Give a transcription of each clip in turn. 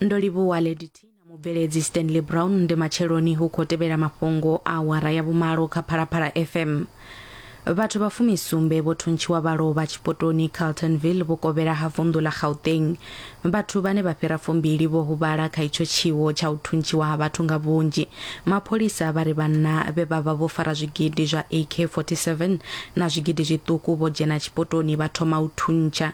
ndo livhuwa lady t na mubveledzi stanley brown ndi matsheloni hu khou tevhela mafhungo a awara ya vhumalo kha phalaphala fm vhathu vha fumisumbe vho thuntshiwa vha lovha tshipotoni carltonville vhukovhela ha vunḓu ḽa gauteng vhathu vhane vha fhira fumbili vho huvhala kha itsho tshiwo tsha u thuntshiwa ha vhathu nga vhunzhi mapholisa vha ri vhanna vhe vha vha vho fara zwigidi zwa ak 47 na zwigidi zwiṱuku vho dzhena tshipotoni vha thoma u thuntsha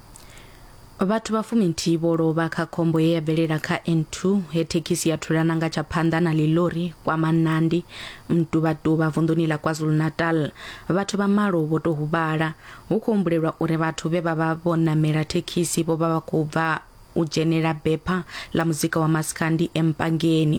Vhathu vha fuminthihi vho lovha kha khombo ye ya bvelela kha N2 he thekhisi ya thulana nga tsha phanḓa na ḽilori kwa Manandi, Mtuvhatuvha vunḓuni ḽa KwaZulu-Natal. Vhathu vha malo vho tou huvhala. Hu khou humbulelwa uri vhathu vhe vha vha vho ṋamela thekhisi vho vha vha khou bva u dzhenela bepha ḽa muzika wa Maskandi e Mpangeni.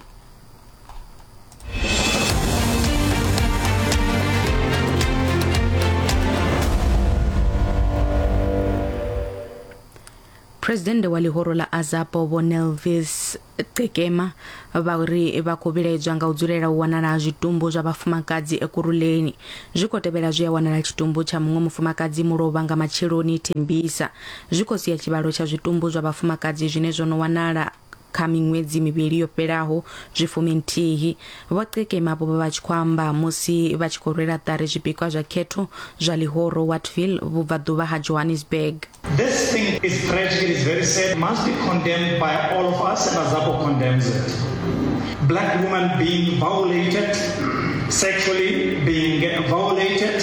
presidennde wa ḽihoro ḽa azapo vho nelvis qekema vha ri vha khou vhilaedzwa nga u dzulela u wanala ha zwitumbu zwa vhafumakadzi ekuruleni zwi khou tevhela zwi a wanala tshitumbu tsha muṅwe mufumakadzi mulovha nga matsheloni thembisa zwi khou sia tshivhalo tsha zwitumbu zwa vhafumakadzi zwine zwo no wanala kha miṅwedzi mivhili yo fhelaho zwi fumi nthihi vho qekema vho vha vha tshi khou amba musi vha tshi khou rwela ṱari zwipikwa zwa khetho zwa ḽihoro wattville vhubvaḓuvha ha johannesburg This thing is tragic, it is very sad, must be condemned by all of us and Azapo condemns it. Black women being violated, sexually being violated,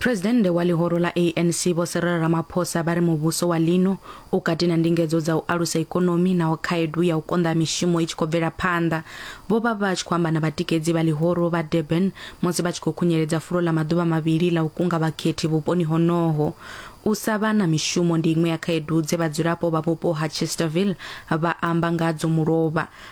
Phresidennde wa ḽihoro ḽa ANC Vho Cyril Ramaphosa vha ri muvhuso wa ḽino u kati na ndingedzo dza u alusa ikonomi naho khaedu ya u konḓa ha mishumo i tshi khou bvela phanḓa. Vho vha vha tshi khou amba na vhatikedzi vha ḽihoro vha Durban musi vha tshi khou khunyeledza fulo ḽa maḓuvha mavhili ḽa u kunga vhakhethi vhuponi honoho. U sa vha na mishumo ndi iṅwe ya khaedu dze vhadzulapo vha vhupo ha Chesterville vha amba ngadzo mulovha.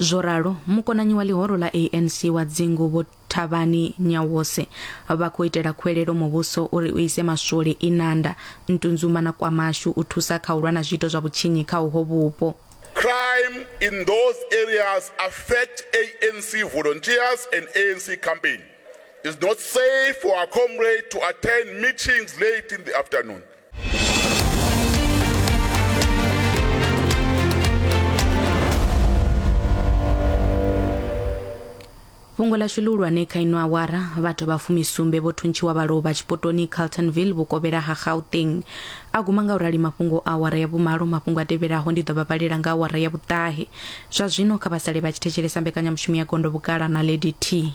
Zwo ralo, mukonanyi wa ḽihoro ḽa ANC wa dzingu Vho Thabani Nyawose vha khou itela khuwelelo muvhuso uri u ise maswole Inanda, Ntunzuma na KwaMashu u thusa kha u lwa na zwiito zwa vhutshinyi kha uho vhupo. Crime in those areas affect ANC volunteers and ANC campaign. It's not safe for our comrade to attend meetings late in the afternoon. fhungo ḽashu ḽihulwane kha ino awara vhathu vha fumisumbe vho thuntshiwa vha lovha tshipotoni carltonville vhukovhela ha gauteng a guma nga u rali mafhungo a awara ya vhumalo mafhungo a tevhelaho ndi ḓo vha vhalela nga awara ya vhuṱahe zwa zwino kha vha sale vha tshi thetshelesa mbekanyamushumo ya gondo vhugala na lady t